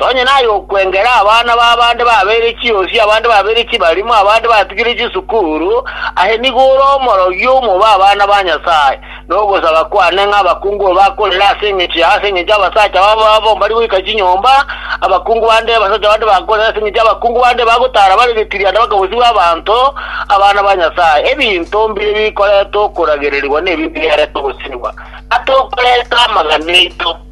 Onye naye okwengera abana b'abande babeire chionsi, abande babeire chibarimu, abande batigire chisukuru, aye nigo ore omorogia omo bw'abana ba Nyasae. Nogosaba kwane ng'a abakungu abo bakorere ase engencho yao, ase engencho y'abasacha babo babombani goika chinyomba, abakungu bande, abasacha bande bakorere ase engencho y'abakungu bande bagotaara bare getirianda bakabosibwa abanto, abana ba Nyasae. Ebinto mbire bikoreta okoragererigwa nebi biarete ogosinigwa, ata okoreta amagana aito.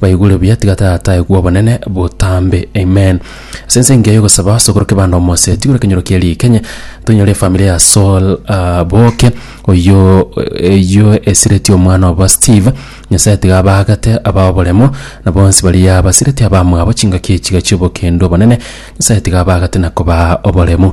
Baigure buya, tiga tata aigwe obonene botambe. Amen. Ase ense engiya y'ogosaba, sokoro kebanda omose, tigure ekenyoro kie riikenya, tonyore efamiri ya Saul ah, boke, oyio eyio esireti omwana obo Steve, Nyasaye tiga abaagete aba oboremo, na bonsi baria basireti abamwabo chingaki echiga chi'obokendo obonene, Nyasaye tiga abaagete na kobaa oboremu.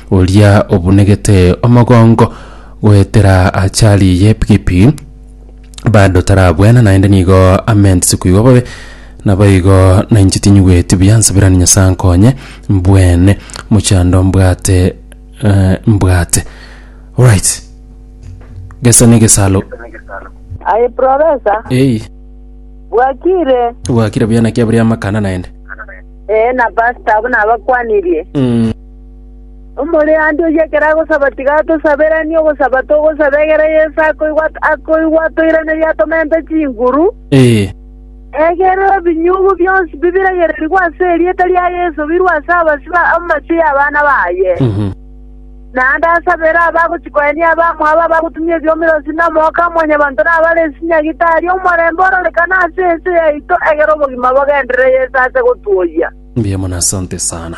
Oria obunegete omogongo goetera achari y'epikipiki, bado tarabwena, naende nigo amentisi koigwa bobe, naboigo nainche tinyigweti buya, nsubirani Nyasae ankonye mbwene mochando mbwate eh, mbwate. Alright. Gesa negesalo. Aye profesa, Ei, bwakire gwakire buya naki abere amakana naende. ee na pastor abwo nabakwanirie. Mm. Omorwoti oyoka ekero agosaba tiga atosaberanie ogosaba togosaba egere Yeso akoigwa akoigwa atoiranerie atomente chinguru, egere ebinyugu bionsi bibiragererigwe ase erieta ria Yeso birwe ase abasio amasio y'abana baye. Naende asabere abagochia koenia abamwabo abagotumia ebiomera ase Omoika o mwanyabanto na abare ase Nyagetari, omorembe ororekane ase ense yaito egere obogima bogenderere Yeso ase gotuoyia. Mbuya mono asante sana.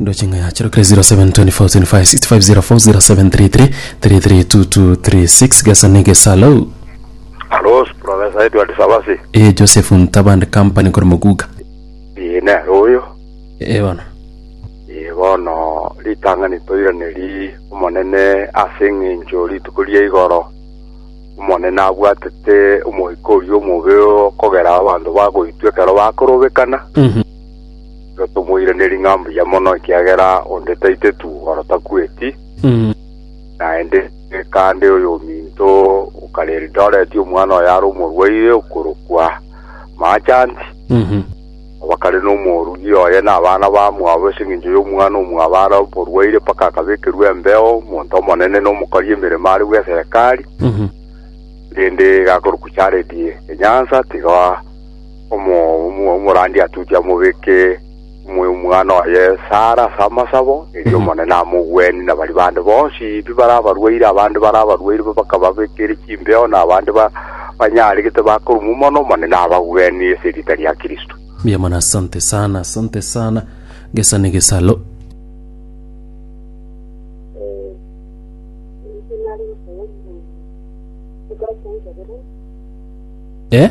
Ndoche ng'a yachire kere 0724256504033236 gesa ne gesa alo Aros, Profesa Edward Sabasi. e Joseph Ntabande company kore moguga Ee, nere oyo. e bono Ee, bono ritang'ani toiranerie Omonene ase eng'encho rituko ria igoro Omonene abwatete omoika oria omobe o kogera abanto bagoitwa ekero bakorobekana. Mhm. Totomoiranerie ng'a mbuya mono, ekiagera onde taite tu oro takueti, naende kande oyominto okare Eldoreti omwana oye are omorwaire okorokwa Marchant, obakare n'omoorugi oye na abana bamwabo ase engencho y'omwana omwabo are omorwaire mpaka akabekerwa embeo, omonto omonene na omokori emeremo are bw'eserekari, rende gakorokwa Charedi enyansa tiga Omorandia atutie amobeke omoyo omwana oye Sara ase amasabo, erio Omonene amogwenie na baria bande bonsi bare abarwaire, abande bare abarwaire bakababekere chimbeo, na abande banyaregete bakorumwa mono, Omonene abagwenie ase erieta ria Kristo. Mbuya mono asante sana asante sana gesa ne gesalo. Eh?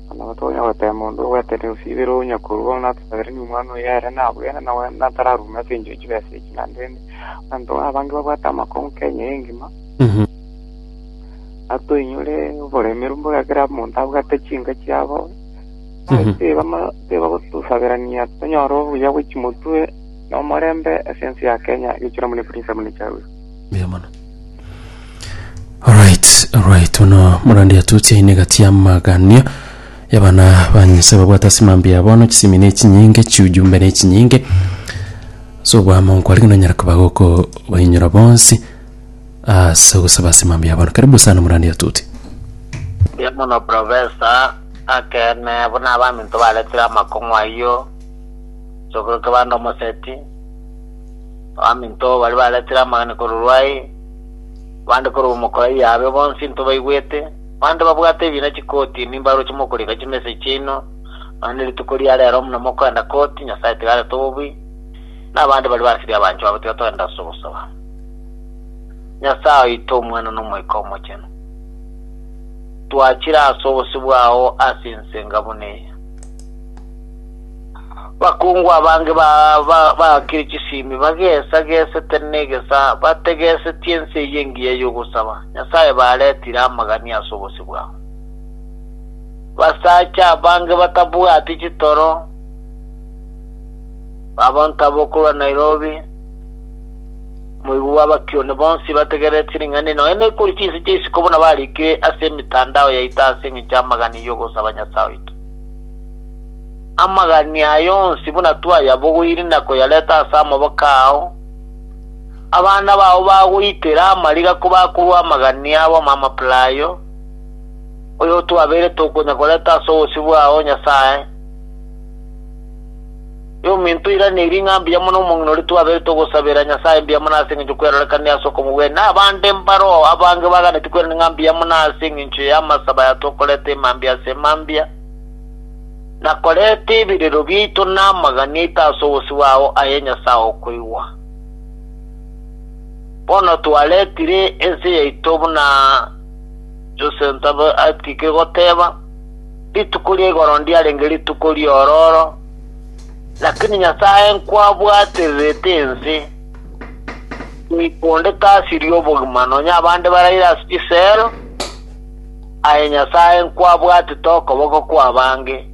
Onye tonya goteba monto ogweterire osiibere onya korua, natasabere nomwana oyio ere nabwene na gwenene atararume ase enchera chibesa echi. Naende rende, abanto abange babwate amakong'u Kenya eye engima, atoinyore oboremeru mbore kera omonto abwate chinka chiabo, tibagotosaberania tonyore obuya bwe chimotwe na omorembe ase ense ya Kenya, egekiagera buna Prince Amini Charles. Mbuya mono. Alright, alright, bono morandi atuti aine egati y'amaganio y'abana ba Nyasae babwate ase mambia bono chisemi na echinyinge chiujumbe na echinyinge ase oboamo nkwarigi nonyara koba goko bainyora bonsi ase ogosaba ase mambia bono karibu sana morandi atuti Mbuya mono profesa akeene buna abaminto baretire amakong'u ayio sokorokebande omoseti Abaminto baria baretire amang'ana korwa aye, abande korwa omokuai yabe bonsi ntobaigwete, abande babwate ebina chikoti nimbaroche mokorika chimesa chiaino, nonya nerituko ria rero muna mokoenda koti, Nyasae tiga arete obobui, na abande baria basiria abanchwa abo tiga toenda ase ogosaba. Nyasae oito Omwana na Omoika Omochenu, twachire ase obosio bwao ase ense enga buna eye. Abakungu abange baakire chisimi bagesa gesete negesaa bategesetie ense eye engiya yogosaba Nyasae baretire amagania ase obose bwabo. Abasacha abange batabwati chitoro babaunta bokorwa Nairobi omoigwa bwa abakioni bonsi bategeretie ring'ana eri nonya nekorwa chinse chia isiko buna barikire ase emitandao yaito ase engencho y'amagania yogosaba Nyasae oito. Amagani aya onsi buna twayabogoire na koyareta ase amaboko ao, abana bao bagoitera amariga kobakorua amagani abo amamaperayo, oyotwabeire tokonya koreta ase obosio bwao, Nyasae. Yominto oiranerie ng'a mbuya mono omong'ina oria twaberete ogosabera Nyasae mbuya mono ase engencho y'okwerorekania ase okomogwenia, na abande mbaroo abange baganetie koirania ng'a mbuya mono ase engencho y'amasabo aya tokorete mambia ase mambia, na koreta ebirero biaito na amagani aito ase obosio bwao, aye Nyasae okoigwa. Bono twaretire ense yaito buna Josentabati atigire goteba, Rituko ria igoro ndiarenge rituko ri'ororo, Lakini Nyasae nkwabwatererete ense, goika onde tasirie obogima, nonya abande baraire ase chisero, aye Nyasae nkwabwatete okoboko kw'abange.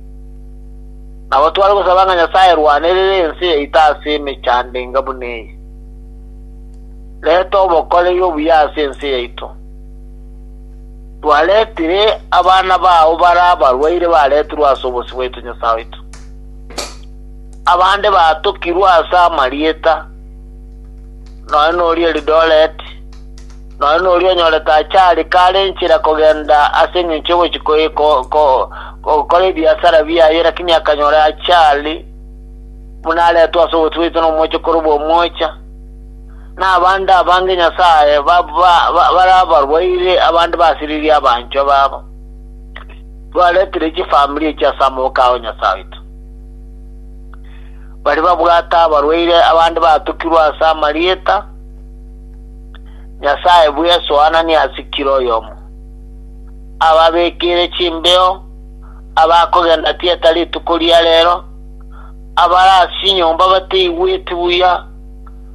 Nabo tware gosaba ng'a Nyasae erwanerere ense yaito ase emechando enga buna eye. Reta obokoreri obuya ase ense yaito. Twaretire abana bao bare abarwaire baretirwe ase obosio bwaito Nyasae oito. Abande batokirwe ase amarieta, nonya noria Elidoret, nonya noria onyorete achare kare enchera kogenda ase engencho egochi ko- ko- ko- gokora ebiasara biaye, lakini akanyora achare buna aretwe ase obosio bwaito nomochokoro bw'omwocha. na abande abange Nyasae bare abarwaire, abande basiririe abanchwa babo, baretire chifamiri echi ase amaboko ao Nyasae oito. Baria babwate abarwaire abande batokirwe ase amarieta, Nyasae bw'esoananie ase kera oyomo, ababekeire chimbeo, abakogenda tieta rituko ria reero, abare ase chinyomba bataigweti buya,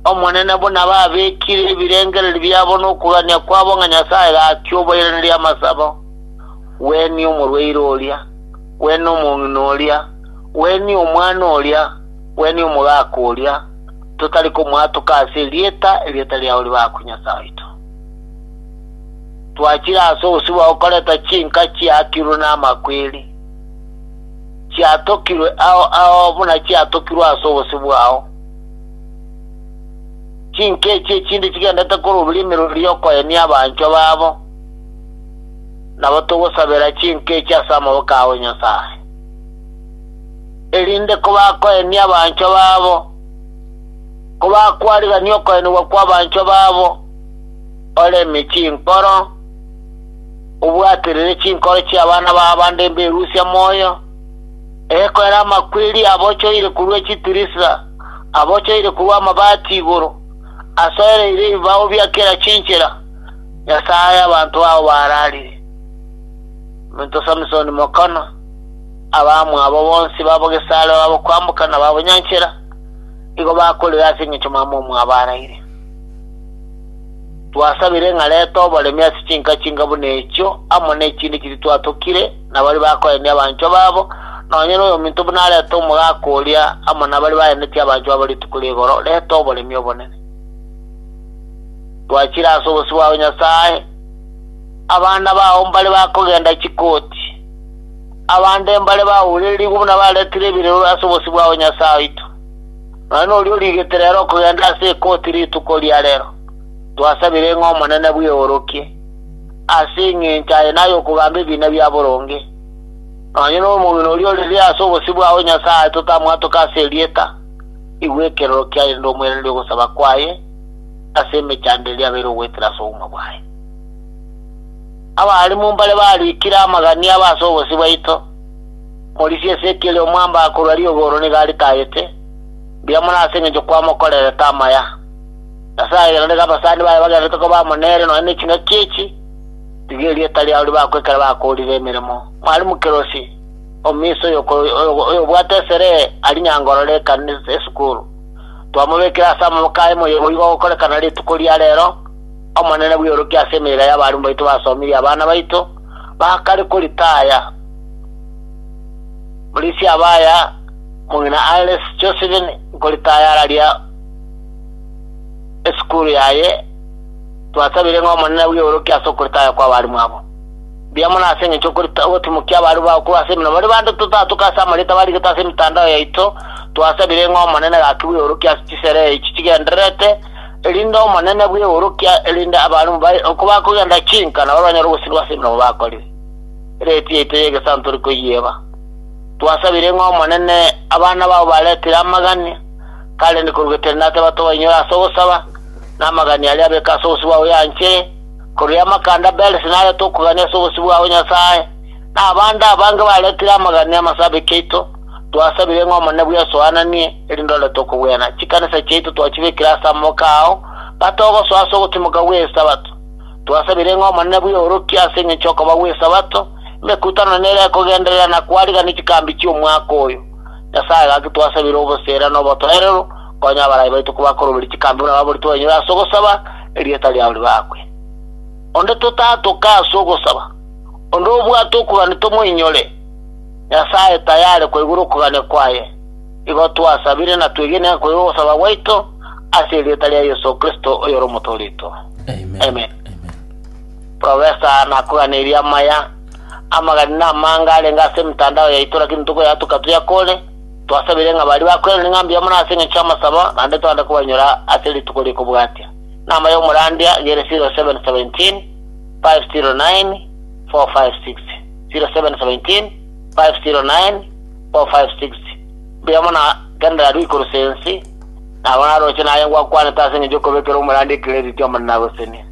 Omonene buna babekire ebirengererio biabo nokogania kwabo ng'a Nyasae gaki obairanerie amasabo, gwenie omorwaire oria, gwenie omong'ina oria, gwenie omwana oria, gwenie omogaka oria, totari komwatoka ase erieta, erieta riao ribakwe Nyasae oito. Twachire ase obosibwa gokoreta chinka chiakirwe namakweri, chiatokirwe ao ao buna chiatokirwe ase obosibwa ao, Chinka echi echinde chigendete korwa oborimi roria okoyenia abanchwa babo, nabo togosabera chinka echi ase amaboko ao, Nyasae, erinde kobakoyenia abanchwa babo, kobakwarigania okoenigwa kw'abanchwa babo, oreme chinkoro, obwaterere chinkoro chi'abana b'abande mberusia moyo, Eeko ere amakweri abochoire korwa chitirisra, abochoire korwa amabaati igoro, asoereire ebibao bia kera chinchera, Nyasae abanto bao baararire. Omonto Samisoni mokana, abamwabo bonsi babo gesaare babo kwamboka na babo nyanchera, igo bakorire ase engencho mama omwabo araire. Twasabire ng'a reta oboremi ase chinka chinga buna echio amo nechinde chititwatokire, na baria bakoenia abanchwa babo, nonya noyominto buna arete omogaka oria amo nabaria baenetie abanchwa babo rituko ri'igoro, reta oboremi obonene. Bwachire ase obosio bwao Nyasae, abana bao mbare bakogenda chikoti, abande mbare baurerigwe buna baretire ebirero ase obosio bwao Nyasae oito. Nonya noria origete rero okogenda ase ekoti rituko ria rero, twasabire ng'a Omonene bweorokie. ase engencho aye naye okogamba ebiina bia boronge. Nonye nomong'ina oria orere ase obosio bwao Nyasae aye totamwatoka ase erieta, igwa ekerero kiaye rende omoiranerie ogosaba kwaye ase emechando eria abeire ogoetera ase obogima bwaye. Abarimo mbare barikire amagani aba ase obosio bwaito, Morisia Esekieli omwambaa korwa riogo oro nigo aritagete, mbuya mono ase engencho kwamokorerete amaya. Nyasae, ekero nigo abasani baye bagenderete koba amo nere nonya ne ching'aki echi, tiga erieta riao ribakwe ekero bakoorire emeremo. Mwalimu Kiroshi, Omiisa oyobwate esere aria nyangororo ekanisa esukuru, twamobekire ase amaboko aye moyo boigo gokorekana rituko ria rero. Omonene bweyorokie ase emeiga y'abarimu baito basomirie abana baito bakare koritaya. Morisia abaya, Mong'ina Alice Josephine, nkoritaya araria. esukuru yaye, twasabire ng'a Omonene abuye oborokia ase okoritaya kw'abarimu abo. Mbuya mono ase engencho y'okorita- y'ogotimokia abarimu bao korwa ase emenwa. Baria bande totatoka ase amarieta barigetwe ase emetandao yaito, twasabire ng'a Omonene gaki bw'eborokia ase chisera echi chigendererete, erinde Omonene bw'eborokia, erinde abarimu baye oko bakogenda chinka nabo banyare ogosirwa ase emeremo bakorire. Ereeti yaito y'egesanto tori koyieba. Twasabire ng'a Omonene abana bao baretire amagania, karende korwa Beteli natabate obainyoe ase ogosaba, na amagani aria abeke ase obosio bwao yanche, korwa Yamakanda Berith narete okogania ase obosio bwao Nyasae, na abande abange baretire amagani amasabe kiaito, twasabire ng'a Omonene bwesoananie, erinde orete okogwena. Chikanisa chiaito twachibekire ase amaboko ao, batogosoa ase ogotimoka gw'Esabato. Twasabire ng'a Omonene bweorokie ase engencho y'okoba gw'Esabato, emekutano nere ekogenderera, na kwariganie chikambi chi'omwaka oyo. Nyasae gaki twasabire obosera na obotoereru, konya abarai baito kobakoroberia chikambe buna babori twainyore ase ogosaba, erieta riao ribakwe. Onde totaatoka ase ogosaba, onde obwate okogani tomoinyore. Nyasae tayare koigora okogania kwaye, igo twasabire na twegene akoigwe ogosaba gwaito, ase erieta ria Yeso Kristo, oyore Omotoori oito. Amen. Profesa nakoganerie amaya. Amagani namange arenge ase emetandao yaito lakini tokoyatuka toyake ore. Twasabire ng'a baria bakwerire ng'a mbuya mono ase engencho y'amasabo naende twande kobanyora ase rituko ria kobwatia. Namba y'omorandia, 0717 509 456, 0717 509 456 Mbuya mono genderera rwiko rusensi, nabo naroche naye ngwakwanete ase engencho y'okobekera omorandia ecredit Omonene agosenie.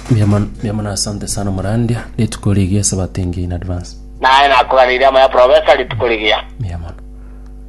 Mbuya mono, mbuya mono asante sana Omorandia, rituko rigiya Esabato engiya in advance. Naye nakoganeire amo ya Professor rituko rigiya. Mbuya mono.